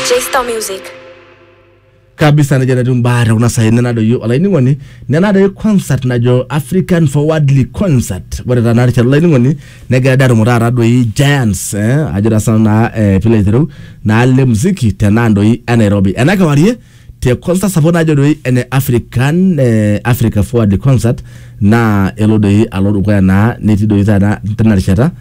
J-Star Music. kabisa nejo natii mbaa te kuna saai nenadoyio olainining'oni nenadayu concert najo african forwardly concert ore taa narishata olainining'oni negira dii atumo taata doi giants eh, ajo taa sana naa eh, pilo aitereu naa le muziki tenaa doi enairobi ena kewarie te concert sapuk najo doi ene African eh, Africa Forward concert naa elo doi alo dukuya naa netii doi taata tena rishata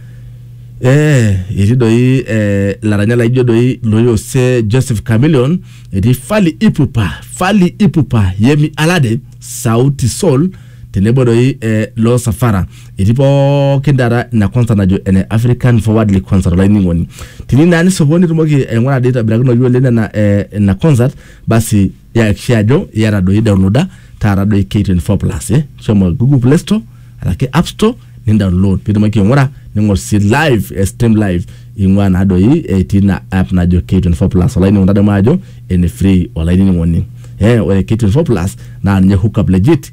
eh, etii doi eh, laranyak laijo doi loyose Joseph Chameleon etii Fally Ipupa Fally Ipupa Yemi Alade Sauti Sol tenebo doi eh, Loo Safara etii pookin taata ina concert najo ene African Forwardly Concert olainining'oni. Tini naa nisopon nitumoki aing'ura dii aitobirakinoyu oleng nena eh, ina concert basi yakikisha ajo iyata doi downloada taata doi K24 Plus eh. Shomo Google Play Store araki App Store nindownload pitumoki aing'ura ning'or sii live eh, stream live ing'ua naa doi etii ina app najo K24 Plus olainining'oni tadamu ajo ene free olainining'oni. Eh, ore K24 Plus naa ninye hookup legit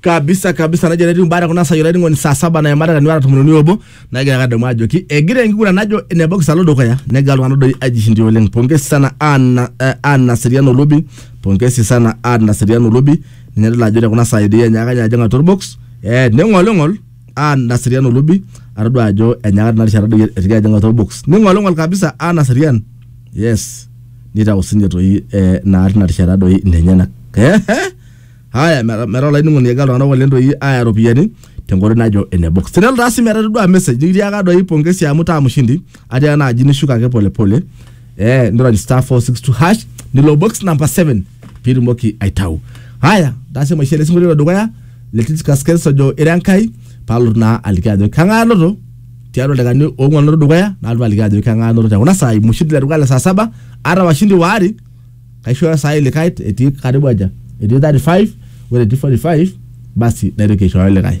kabisa kabisa najo enetiu mbaa tekuna saai olainining'oni saa saba naimata tenuata tomon uni obo nagira kadamu ajoki egira enkiguran najo ene box alo dukuya negira iltung'anak doi aijishindia oleng pongezi sana Anna eh, Anna Seriano Lubi pongezi sana Anna Seriano Lubi ninye adol ajo tekuna saai doi enyaaka ninye ajing atua orbox eh neng'oling'ol aa naserian olubi atodua ajo enyaaka tina rishata doi etoki ajing atua box ning'oling'ol kabisa aa naserian yes nitau sinye toi eh, naa tina rishata doi inenyenak Ehe. haya meta meta olainining'oni egira iltung'anak oleng doi aaya iropiyiani tenkoitoi najo ene box tenelo taa sii metaa itodua message nikitiaka doi pongesi amu taa mshindi atiaka naaji nishuko ake polepole eh, nirony star 462 hash nilo box number 7 pitumoki aitau haya tase maisha ele sinkolio dukuya le Titus Kens ojo ira enkai palotu naa aliki ajo kang'ae anoto tiatua ildaikani oong'uan anoto dukuya nalotu aliki ajo kang'ae anoto tekuna saai mushindi le dukuya le saa saba ata washindi waare kaishooyo saai likae etii karibu aja etii 35 ore etii 45 basi naitoki aishooyo likae